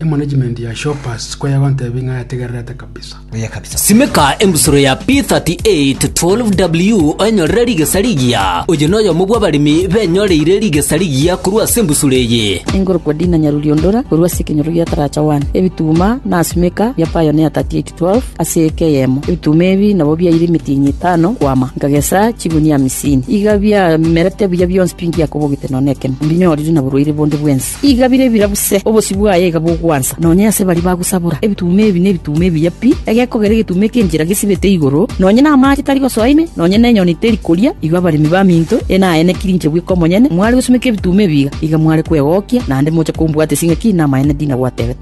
Emanagement ya Shoppers sikoyegwa ntebi ng'a yategererete kabisa. Simeka embusuro ya P38 12W oenyorere rigesa rigiya. Oyo noyomo bw'abaremi benyoreire rigesa rigiya korwa ase embusuro eye. Enkorokwa Dina Nyaruliondora korwa ase ekenyoro gia Taracha One, ebituma na simeka bia Pioneer 38 12 ase eke eyemo. Ebituma ebi nabo biaire emetienyi etano kwama, nkagesa chigunia amisini. Iga biamerete buya bionsi pi ngiakobogete nonya nekemo, mbinyorire na borwaire bonde bwensi. Igabire ebirabu se, obosio bwaye iga bogwansa, nonya ase baria bagosabora. Ebituuma ebi nebituuma ebiya pi, egekogera egetuuma eki'enchera gesibete igoro, nonya namaache tari gosoa ime, nonya nenyoni teri koria. Igo abaremi baminto ene aye nekirinche bweka omonyene, mware gosumeka ebituuma ebi iga, iga mware kwegokia, naende moche kombwatesa ing'aki namaene ndinagwatebete.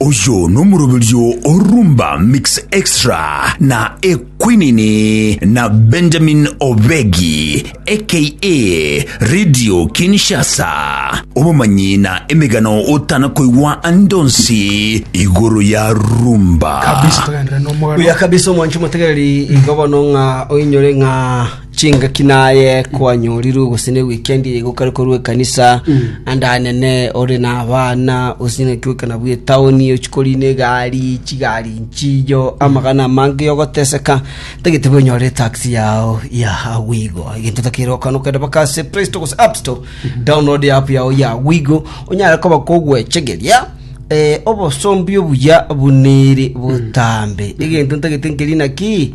Oyo nomoroberio o Rumba Mix Extra na Ekwinini na Benjamin Obegi aka Radio Kinshasa. Obomanyi na emegano otana koigwa ande onsi igoro ya Rumba. kabisa togenderere nomogaro Buya kabisa omwancho motegereri igo bono ng'a oinyore ng'a Chingaki naye kwanyorirwe gose ne weekend eye gokare korwa ekanisa ande anene ore na abana gose ng'aki goika nabwo etaoni ochia korina egari chigari nchiiyo amagana amange ogoteseka tagete bwe onyore etaxi yao ya wigo egento takeire okana okende baka ase play store gose app store download app yao ya wigo onyare koba kogwechegeria eh, obosombi obuya bunere botambe egento ntagete nkeri naki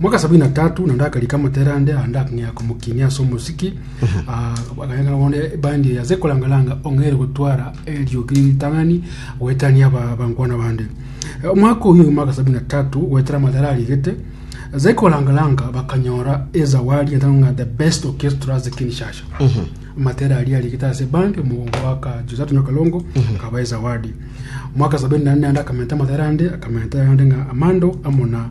Mwaka sabini na tatu naende akarika amotera ande ande akang'ea komokinia ase omosiki Ah, akanyakana bono ebandi eye ase korangaranga ong'aire gotwara eriogi ritang'ani goetania aba- abankwana bande Eh, omwaka oyio omwaka sabini na tatu goetera amatera arigete ase korangaranga bakanyora ezawadi etang'a the best orchestra ase kinshasha amatera aria arigete ase bandi omogongo waka josatu nyakalongo akaba ezawadi mwaka sabini na nne ande akamenta amatera ande akamenta ande ng'a amando amo na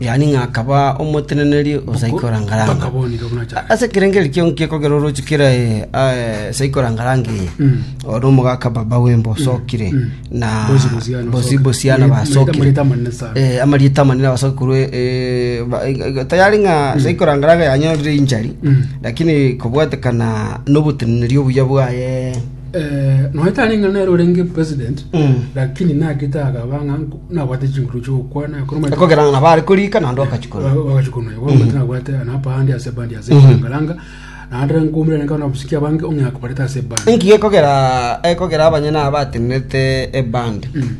yaani ng'a akaba omoteneneri o saikorangarange. Ase ekerengo eke kiaino gekogera orooche kera saikorangarange eye, oo nomogaka baba w'emba osokire, na bosi bosiana basokire, Eh, amarieta amanene abasoki korwa eh, ba- eh, tayari ng'a saikorangarange yanyorire inchari lakini kobwatekana noboteneneri obuya bwaye noetari ng'a nere orenge president Mm. lakini nagete akaba ng'a nabwate chinguru chiokwana ekero omanyete- ekogerana na bare korika naende okachikora wakachikuna igo omanyete nabwate napa handi ase bandi ase ngaranga naende nkomura nka nabusiki abange ong'ea kobareta ase bandi inki gekogera ekogera abanyene aba batenenete ebandi Mm.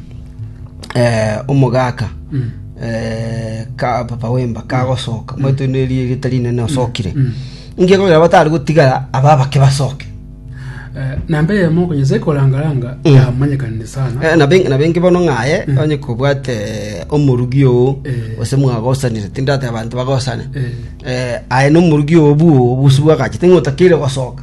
eh, omogaka Mm. eh, ka papa wemba kagosoka omanyete oino erio erieta rinene osokire Mm. inki gekogera batari gotigara aba abake basoke namba eyemo ogo Nyasae koranga-ranga Mm. yamanyekanire sana Eh, na ben- na bengi bono ng'aye Mm. onye kobwate eh, omorugi oo Eh. gose mwagosanire tindate abanto bagosane Eh. Eh, aye na omorugi oo bwoo bosibwa gachete ng'otakeire gosoka